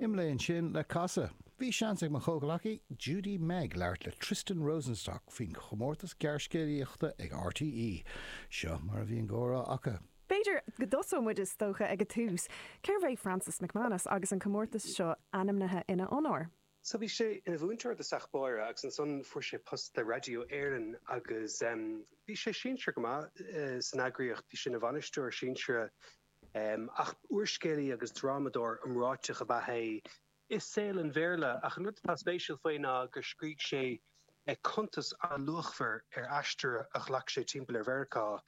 Anois, roimh an amhrán sin le casadh, bhí seans ag mo chomhghleacaí, Judy-Meg, labhairt le Tristan Rosenstock faoin chomórtas gearrscéalaíochta ag RTÉ. Seo mar a bhí an comhrá acu. B'fhéidir go dtosódh muid is dócha ag an tús, cérbh é Francis McManus agus an comórtas seo ainmnithe ina onóir? So bhí sé ina mhúinteoir i dtosach báire agus ansan fuair sé post le Raidió Éireann agus bhí sé sinsearach go maith san eagraíocht, bhí sé ina bhainisteoir sinsearach Ach úrscéalaí agus drámadóir iomráiteach ab ea é i saol an Bhéarla ach an rud atá spéisiúil faoi ná gur scrígh sé cuntas an-luachmhar ar aistear a ghlac sé timpeall ar Mheiriceá,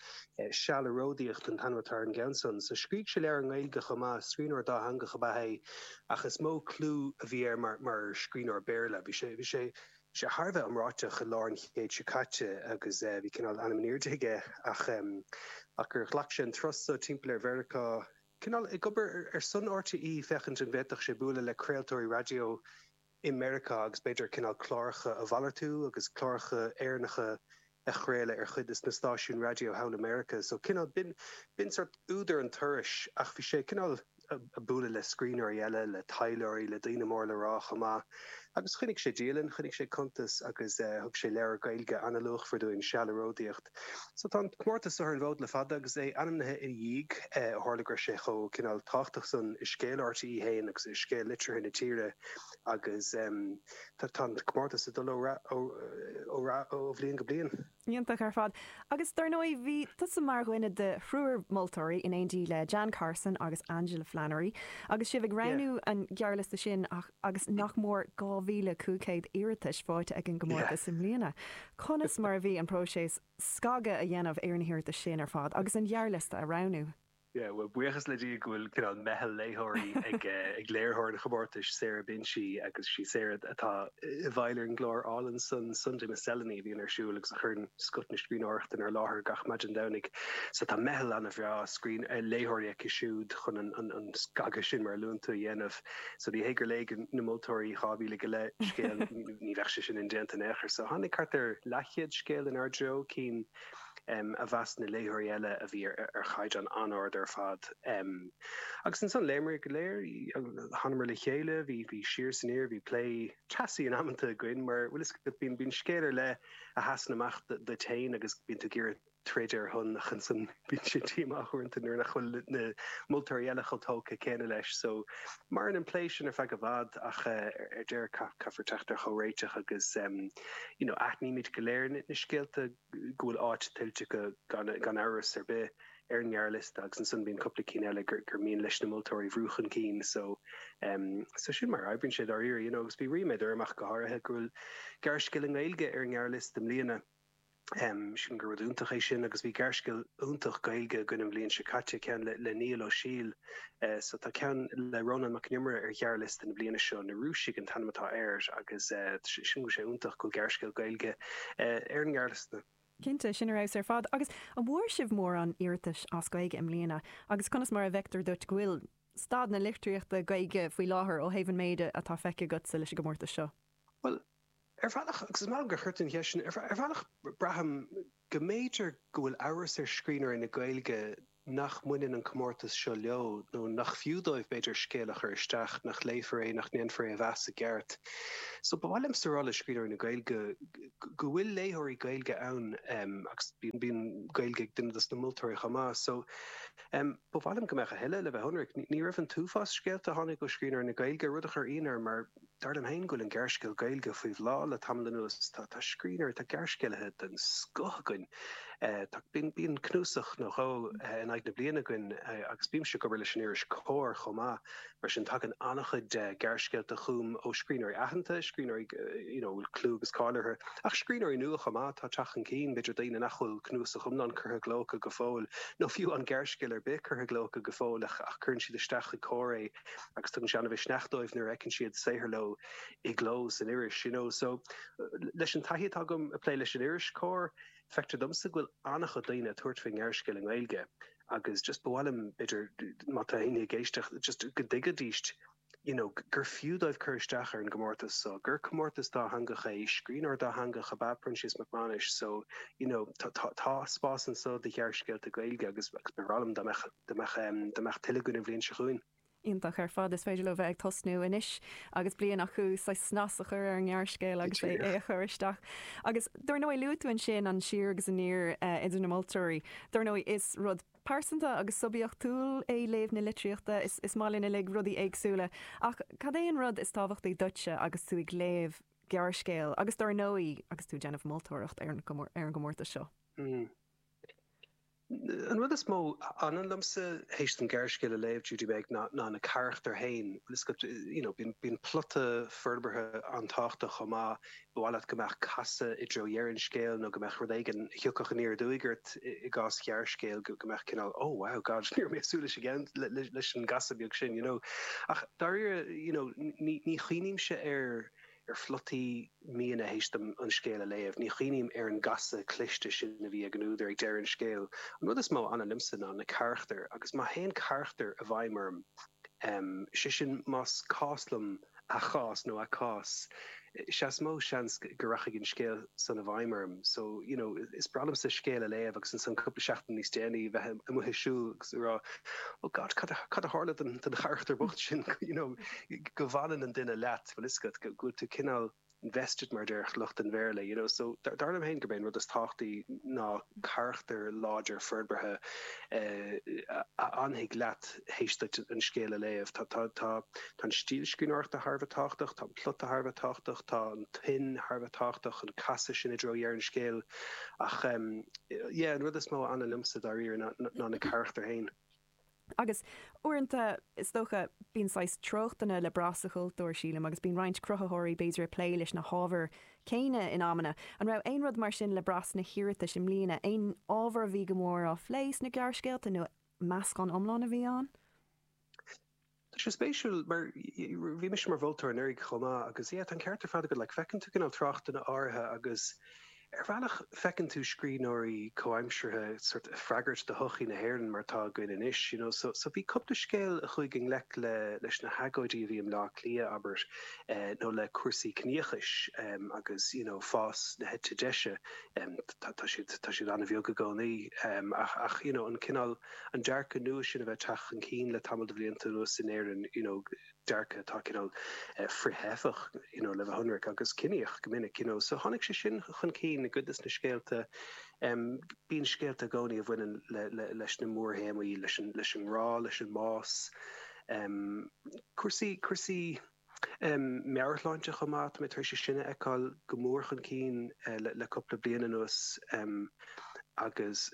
Seal ag Ródaíocht an t-ainm atá ar an gceann san. So scrígh sé leabhair i nGaeilge chomh maith. Scríbhneoir dátheangach ab ea é ach is mó clú a bhí air mar scríbhneoir Béarla. Bhí sé. sé thar a bheith iomráiteach i lár an chéid seo caite agus bhí cineál ainm in airde aige ach ach gur ghlac sé an turas so timpeall ar Mheiriceá cineál ag obair ar son RTÉ féachaint an bhféadfadh sé bualadh le craoltóirí raidió i Meiriceá agus b'fhéidir cineál cláracha a mhalartú agus cláracha Éireannacha a chraoladh ar chuid de na stáisiúin raidió thall i Meiriceá. So cineál, b'in, b'in sórt údar an turais ach bhí sé cineál a' bualadh le scríbhneoirí eile, le taidhleoirí, le daoine mór le rá chomh maith. Agus choinnigh sé dialann, choinnigh sé cuntas agus eh thug sé leabhar Gaeilge an-luachmhar dúinn, Seal ag Ródaíocht. So tá an comórtas so ar an bhfód le fada agus é ainmnithe ina dhiaidh eh ó tharla go raibh sé chomh cineál tábhachtach san i scéal RTÉ fhéin agus i scéal litríochta na tíre agus em. Tá an comórtas ag dul ó rath, ó bhliain go bliain. Iontach ar fad. Agus dár ndóigh bhí tusa mar dhuine de thriúr moltóirí in éindí le Jan Carson agus Angela Flannery agus sibh ag roghnú an ghearrliosta sin agus nach mór 2,500 iarratas fáighte ag an gcomórtas i mbliana. Conas mar a bhí an próiseas scagadh a dhéanamh ar na hiarratais sin ar fad agus an gearrliosta a roghnú? Yeah, bhuel, buíochas le Dia go bhfuil cineál meitheal léitheoirí ag ag léiritheoir an chomórtais, Sarah Binchy, agus is í Sarah atá i bhfeighil ar an gclár álainn san Sunday Miscellany a bhíonn ar siúl agus a chuireann scoth na scríbhneoireachta inár láthair gach maidin Domhnaigh. So tá meitheal an-bhreá scríbh- eh, léitheoirí aici siúd chun an, an, an scagadh sin mar a luann tú a dhéanamh. So ní hé gur léigh na moltóirí dhá mhíle go leith scéal, ní bheadh sé sin indéanta in aon chor. So tháinig thart ar leathchéad scéal inár dtreo, cinn. a mheas na léitheoirí eile a bhí ar chaighdeán an-ard ar fad. Agus ansan, léimear go léir, thánamar le chéile, bhí siar is aniar, bhí plé teasaí in amanta againn, mar, an bhfuil a fhios agat, bíonn scéal ar leith a sheasann amach duit féin agus bíonn tú ag iarraidh troid ar a shon ach ansan bíonn sé díomách uaireanta nuair nach bhfuil na moltóirí eile chomh tógtha céanna leis so, Maireann an plé sin ar feadh i bhfad ach ar deireadh caithfear teacht ar chomhréiteach agus you know aithnímid go léir na scéalta go bhfuil áit tuillte acu gan amhras ar bith ar an ngearrliosta agus ansan bíonn cúpla ceann eile gur mian leis na moltóirí bhrú chun cinn so so sin mar a oibríonn sé dáiríre you know agus bhí ríméad orm ach go háirithe go bhfuil gearrscéal i nGaeilge ar an ngearrliosta i mbliana. Sílim gur rud iontach é sin agus bhí gearrscéal iontach Gaeilge againn an bhliain seo caite, ceann le le Niall Ó Siadhail so tá ceann le Rónán Mac an Iomaire ar ghearrliosta na bliana seo, Na Rúisigh an t-ainm atá air agus sílim go bhfuil sé iontach go bhfuil gearrscéal Gaeilge ar an ngearrliosta. Cinnte, sin ar fheabhas ar fad. Agus an bhfuair sibh mórán iarratais as Gaeilge i mbliana agus conas mar a bhfeictear duit go bhfuil staid na litríochta Gaeilge faoi láthair ó thaobh an méid atá feicthe agatsa leis an gcomórtas seo? Bhuel, Ar bhealach, agus is maith liom gur chuir tú an cheist sin, ar bhealach braithim go mb'fhéidir go bhfuil amhras ar scríbhneoirí na Gaeilge nach mbaineann an comórtas seo leo nó nach fiú dóibh b'fhéidir scéal a chur isteach nach léifear é nach ndéanfar é a mheas i gceart. So ba mhaith liomsa a rá le scríbhneoirí na Gaeilge go bhfuil léitheoirí Gaeilge ann agus bíonn Gaeilge ag duine dos na moltóirí chomh maith. So ba mhaith liom go mbeadh a thuilleadh, le bheith ionraic. Ní raibh an t-uafás scéalta a tháinig ó scríbhneoirí na Gaeilge, rud a chuir ionadh orm mar, Dar liom féin go bhfuil an gearrscéal Gaeilge faoi bhláth le tamall anuas. Tá scríbhneoirí, tá gearrscéalaithe den scoth againn. Tá, bíonn, bíonn cnuasach nó dhó in aghaidh na bliana againn agus bímse ag obair leis an iris Comhar chomh maith. Mar sin tagann an-chuid gearrscéalta chugam ó scríbhneoirí aitheanta, scríbhneoirí you know a bhfuil clú agus cáil orthu. Ach scríbhneoirí nua chomh maith, atá ag teacht chun cinn, b'fhéidir daoine nach bhfuil cnuasach iomlán curtha i gcló acu go fóill nó fiú aon ghearrscéal ar bith curtha i gcló acu go fóill ach cuireann siad isteach chuig Comhar é agus tugann sé an-mhisneach dóibh nuair a fheiceann siad saothar leo i gcló san iris. You know, so, leis an taithí atá agam ag plé leis an iris Comhar, feictear domsa go bhfuil an-chuid daoine ag tabhairt faoin ngearrscéal i nGaeilge agus just ba mhaith liom, b'fhéidir, má tá éinne ag éisteacht, just go dtuigfidíst you know, gur fiú dóibh cur isteach ar an gcomórtas so, gur comórtas dátheangach é, scríbhneoir dátheangach ab ea Proinsias Mac Maghnuis so, you know, tá spás anso do ghearrscéalta Gaeilge agus ba bhreá liom dá mbeadh. dá mbeadh, dá mbeadh tuilleadh againn an bhliain seo chugainn. Iontach ar fad. Is féidir leo bheith ag tosnú anois agus bliain acu saghas snas a chur ar an ngearrscéal agus é a chur isteach. Agus dar ndóigh, luaigh tú ansin an siar agus aniar idir na moltóirí. Dar ndóigh, is rud pearsanta agus suibiachtúil é léamh na litríochta. Is is maith linn uilig rudaí éagsúla. Ach cad é an rud is tábhachtaí duitse agus tú ag léamh gearrscéil agus dar ndóigh agus tú ag déanamh moltóireacht ar an gcomórtas seo? Hmm. An rud is mó a fhanann liomsa théis dom gearrscéal a léamh, déarfainn, ná na carachtair féin. You know, bíonn plota forbartha an-tábhachtach chomh maith. Ba mhaith leat go mbeadh casadh i dtreo dheireadh an scéil nó go mbeadh rud éigin a thiocfadh aniar aduaidh ort, i gcás ghearrscéil, go mbeadh cineál oh, wow, God, ní raibh mé ag súil leis an gceann, leis an gcasadh beag sin, you know. Ach dáiríre, you know, ní chuimhnímse ar. ar phlota, you know, théis dom an scéal a léamh. Ní chuimhním ar an gcasadh cliste sin a bhí ag an údar ag deireadh an scéil. An rud is mó a fhanann liomsa ná na carachtair agus má théann carachtar i bhfeidhm orm, sé sin más cás liom a chás nó a cás, sea is mó seans go rachaidh an scéal san i bhfeidhm orm. So, you know, is breá liomsa scéal a léamh agus ansan cúpla seachtain níos déanaí a bheith amuigh ag siúl agus ag rá Oh God, cad a tharla don charachtar bocht sin, you know, go bhfanann an duine leat. bhfuil fhios agat go bhfuil tú cineál invested mar a déarfadh lucht an Bhéarla you know so dar liom féin gurb é an rud is tábhachtaí ná carachtar láidir forbartha a fhanfaidh leat théis duit an scéal a léamh. Tá tá tá tá an stíl scríbhneoireachta thar a bheith tábhachtach, tá an plota thar a bheith tábhachtach, tá an tuin thar a bheith tábhachtach, an casadh sin i dtreo dheireadh an scéil ach yeah an rud is mó a fhanann liomsa dáiríre ná na carachtair féin. Agus uaireanta, is dócha, bíonn saghas treochtanna le brath sa chultúr, sílim, agus bíonn roinnt cruthaitheoirí b'fhéidir ag plé leis na hábhair céanna in amanna. An raibh aon rud mar sin le brath sna hiarratais i mbliana? Aon ábhar a bhí go mór á phlé sna gearrscéalta nó meascán iomlán a bhí ann? Tá sé spéisiúil mar bhí mise mar mholtóir anuraidh chomh maith agus yeah tá an ceart ar fad agat like feiceann tú cineál treochtanna áirithe agus ar bhealach feiceann tú scríbhneoirí comhaimseartha sort of freagairt do shochaí na hÉireann mar atá againn anois you know so so bhí cúpla scéal a chuaigh i ngleic le leis na hagóidí a bhí i mBleá Cliath abair eh nó le cúrsaí ciníochais em agus you know fás na heite deise em tá tá siad tá siad an-bheag i gcónaí em ach ach you know an cineál an dearcadh nua sin a bheith ag teacht chun cinn le tamall de bhlianta anuas in Éirinn, you know dearcadh atá cineál frith-theifeach you know le bheith ionraic, agus ciníoch go minic, you know. So tháinig sé sin chun cinn i gcuid de na scéalta. Em bíonn scéalta i gcónaí a bhaineann le, le, leis na mórthéamaí, leis an, leis an ngrá, leis an mbás, em cúrsaí, cúrsaí. meabhairshláinte chomh maith. Tá mé tar éis sin a fheiceáil go mór chun cinn le cúpla bliain anuas agus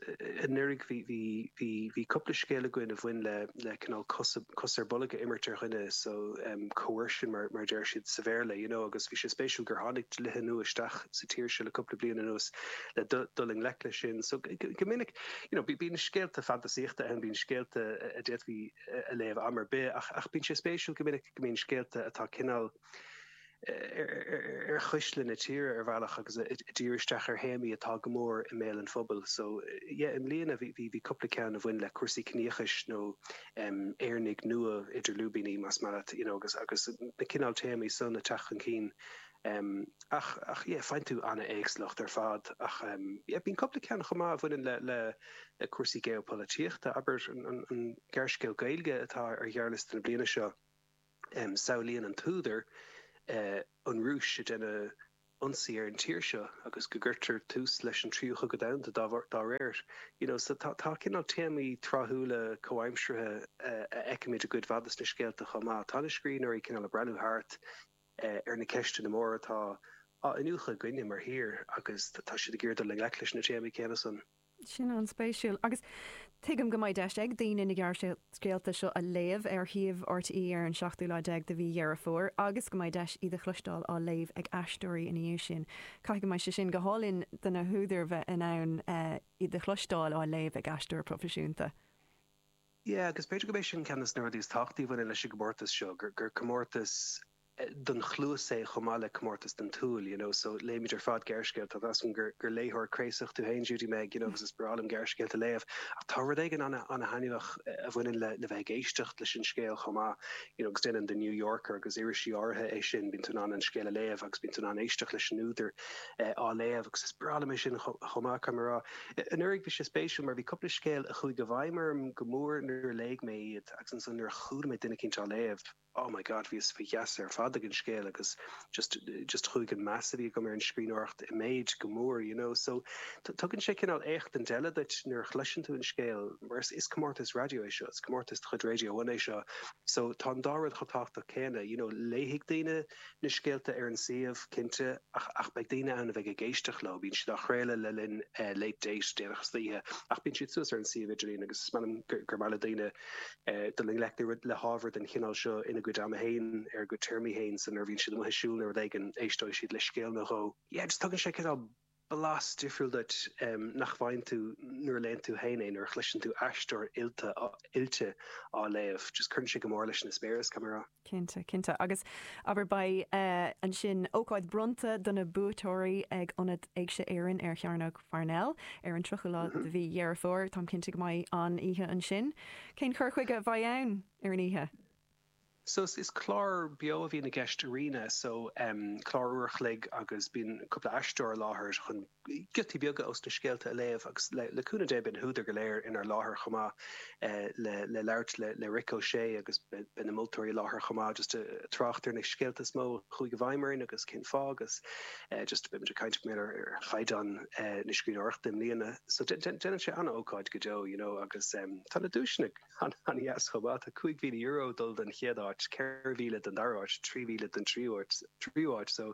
anuraidh bhí cúpla scéal againn a bhain le cineál cos ar bolg a imirt ar dhuine, so coercion mar a deir siad sa Bhéarla, you know, agus bhí sé spéisiúil gur tháinig dlíthe nua isteach sa tír seo le cúpla bliain anuas le dul i ngleic leis sin. So go minic, you know, bíonn scéalta fantasaíochta ann, bíonn scéalta a d'fhéadfaí a léamh am ar bith ach bíonn sé spéisiúil go minic go mbíonn scéalta atá cineál ar chuisle na tíre ar bhealach agus ag díriú isteach ar théamaí atá go mór i mbéal an phobail. So yeah i mbliana bhí bhí bhí cúpla ceann a bhain le cúrsaí ciníochais nó em Éireannaigh nua idir lúibíní más maith leat you know agus agus na cineál téamaí san ag teacht chun cinn em. ach, ach yeah faigheann tú an-éagsúlacht ar fad ach em. yeah bíonn cúpla ceann chomh maith a bhaineann le, le, le cúrsaí geopolaitíochta. Abair an, an, an gearrscéal Gaeilge atá ar ghearrliosta na bliana seo, em. samhlaíonn an t-údar eh. an Rúis ag déanamh ionsaí ar an tír seo agus go gcuirtear tús leis an Tríú Cogadh Domhanda dá bharr, dá réir. You know so tá, tá cineál téamaí tráthúla comhaimseartha a fheicimid i gcuid mhaith de na scéalta chomh maith. Tá na scríbhneoirí cineál ag breathnú thart. ar na ceisteanna móra atá á iniúchadh againne mar thír agus tá siad ag iarraidh dul i ngleic leis na téamaí céanna san. Sin an-spéisiúil. Agus tuigim go mbeidh deis ag daoine na gearrscéalta seo a léamh ar shuíomh RTÉ ar an seachtú lá déag de mhí Dheireadh Fómhair agus go mbeidh deis iad a chloisteáil á léamh ag aisteoirí ina dhiaidh sin. Caithfidh go mbeidh sé sin go hálainn do na húdair bheith in ann iad a chloisteáil á léamh ag aisteoir proifisiúnta. Yeah, agus b'fhéidir gurb é sin ceann des na rudaí is tábhachtaí a bhaineann leis an gcomórtas seo, gur gur comórtas don chluas é chomh maith le comórtas don tsúil, you know, so léimid ar fad gearrscéalta, tá 's agam gur gur léitheoir craosach tú féin Judy Meg, you know, agus is breá liom gearrscéalta a léamh ach tá rud éigin ana ana thaitneamhach a bhaineann le le bheith ag éisteacht leis an scéal chomh maith, you know, agus déanann The New Yorker agus irisí áirithe é sin, bíonn tú in ann an scéal a léamh agus bíonn tú in ann éisteacht leis an údar á léamh agus is breá liom é sin chomh maith, caithfidh mé a rá. Anuraidh bhí sé spéisiúil mar bhí cúpla scéal a chuaigh i bhfeidhm orm go mór nuair a léigh mé iad agus ansan nuair a chuala mé duine eicínt á léamh, oh my God, bhíos faoi gheasa ar fad ag an scéal agus just, just chuaigh an meas a bhí agam ar an scríbhneoireacht i méid go mór, you know. So tugann sé cineál éachtaint eile duit nuair a chloiseann tú an scéal mar is comórtas raidió é seo, is comórtas de chuid Radio One é seo so tá an dá rud chomh tábhachtach céanna, you know, léifidh daoine, na scéalta ar an suíomh, cinnte, ach, ach beidh daoine ann a bheidh ag éisteacht leo, bíonn siad á chraoladh le linn Late Date déanach istoíche, ach bíonn siad suas ar an suíomh idirlín agus is amhlaidh gur, gur maith le daoine dul i ngleic le rud, le hábhar den chineál seo ina gcuid ama féin, ar a gcuid téarmaí féin, so nuair a bhíonn siad amuigh ag siúl nó rud éigin, éisteoidh siad le scéal nó dhó. Yeah, just tugann sé cineál. blas difriúil duit nach bhfaigheann tú nuair a léann tú féin é, nuair a chloiseann tú aisteoir oilte oilte á léamh. Just cuireann sé go mór leis an eispéireas, caithfidh mé a rá. Cinnte, cinnte. Agus, abair, beidh, ansin, ócáid bronnta do na buaiteoirí ag Ionad Éigse Éireann ar Chearnóg Pharnell ar an 30ú lá de mhí Dheireadh Fómhair. Táim cinnte go mbeidh an-oíche ansin. Cén cur chuige a bheidh ann ar an oíche? So is clár beo a bhíonn i gceist arena so em clár uair a chloig agus bíonn cúpla aisteoir i láthair chun giotaí beaga ós na scéalta a léamh agus le le cúnamh Dé beidh na húdair go léir inár láthair chomh maith eh le le labhairt le le Rick O'Shea agus beidh na moltóirí i láthair chomh maith just ag trácht ar na scéalta is mó a chuaigh i bhfeidhm orainn agus cén fáth agus eh just beimid ag caint b'fhéidir ar chaighdeán eh na scríbhneoireachta i mbliana so dé- dé- déanann sé an-ócáid go deo you know agus em tá na duaiseanna An dheas chomh maith. Tá €5,000 ag dul don chéad áit, 4,000 don dara áit, 3,000 don tríú áit so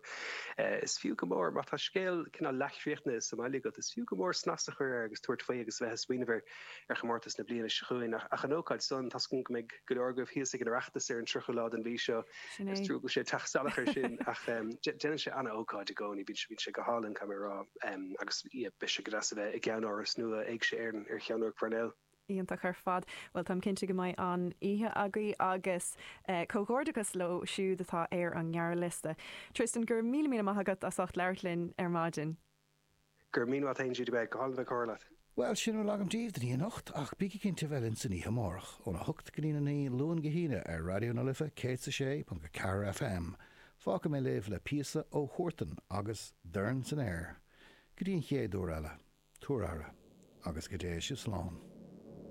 is fiú go mór. Má tá scéal cineál leathchríochnaithe sa mbaile agat, is fiú go mór snas a chur air agus tabhairt faoi agus a bheith ag smaoineamh ar chomórtas na bliana seo chugainn. Ach an ócáid san, tá súil agam go mbeidh go leor agaibh thíos ag an Oireachtas ar an 30ú lá den mhí seo. Sin é. Is trua go bhfuil sé ag teacht salach air sin ach déanann sé an-ócáid i gcónaí. Bíonn sé go hálainn, caithfidh mé a rá, agus beidh sé go deas a bheith i gceannáras nua Éigse Éireann ar Chearnóg Pharnell. Iontach ar fad. Bhuel, táim cinnte go mbeidh an-oíche agaibh agus comhghairdeachas leo siúd atá ar an ngearrliosta. Tristan, go raibh míle míle maith agat as ucht labhairt linn ar maidin. Go raibh míle maith agat, bhí sé go hálainn bheith ag comhrá leat. Bhuel, sin a bhfuil agam daoibh don oíche anocht ach bígí cinnte a bheith linn san oíche amárach, óna hocht go dtí'n a naoi, Luan go hAoine, ar Raidió na Life 106.4 FM. Fágfaidh mé sibh le píosa ó Huartan agus Dorn san Aer. Go dtí an chéad uair eile, tabhair aire, agus go dté sibh slán.